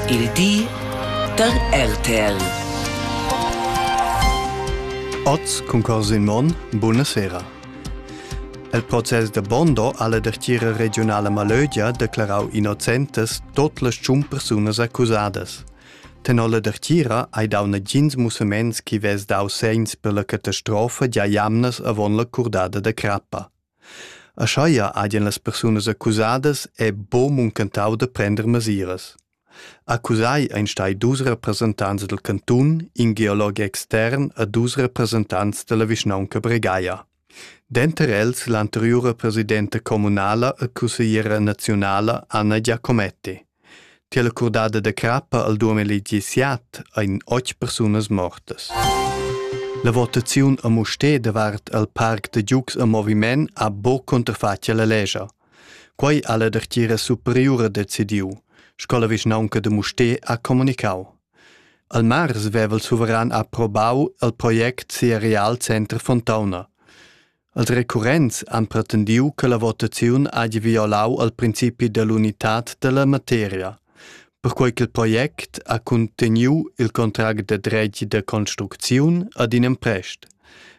Il di da RTL. Oz cun cors in mon, buonasera. El process da Bondo alla dertiera regionala Malögia declarau innocentes tot las tschun persunas accusadas. Tenor la dertiera hai dau nagins musaments chi vess dau segns per la catastrofa gia jamnas avon la curdada da crappa. Aschia hagien las persunas accusadas è buc muncentau da prender mesiras. Accusai ein stai dus representants dal cantun, in geolog extern e dus representants dalla vischnaunca Bregaia. Denter els l'anteriura presidenta communala e cussegliera naziunala Anna Giacometti. Tier la curdada da crappa al duamilli diciat ein oz persunas mortas. La votaziun a Mustér davart al parc da giugs a moviment ha buc cunterfatg alla lescha. Quei ha la dertgira superiura decidiu, sco la vischnaunca de Mustér ha comunicau. Al mars veva il suveran approbau il project sia Realcenter Fontauna. Els recurrents han pretendiu che la votaziun hagi violau al principi dell'unitad dalla materia, perquei ch'il project ha cunteniu il contract da dretg da construcziun ad in emprest.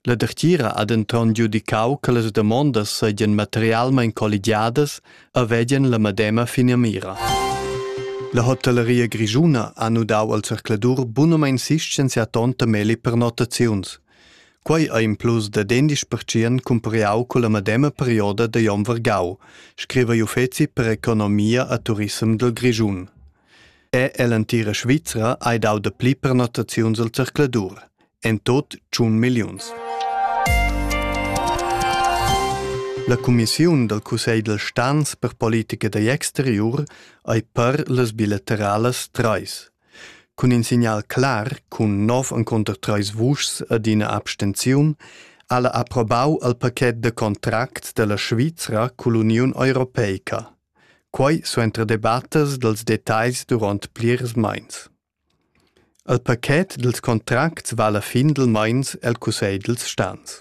La dertgira ha denton giudicau che las damondas seigien materialmein colligiadas e vegien la medema finamira. La hotelleria grischuna ha nudau al zercladur bunamein sistens e tonta meli per notaziuns. Quei ei implus dad endisch pertschient cumpariau culla medema perioda da Jon Vargau, scriva l'uffeci per economia e turissem dil Grischun. Er ell'entira Svizra ei dau dapli pernottaziuns al zercladur, en tot tschun milliuns. La cumissiun dal Cussegl dal Stans per politica da exteriur ei per las bilateralas trais. Cun in signal clar cun nov encunter treis vuschs ed ina abstenziun ha la approbau il paquet da contract dalla Svizra cull'Uniun europeica. Quei suenter debattas dals detagls duront plirs meins. Il paquet dils contracts vala findelmeins el cussegl dils stans.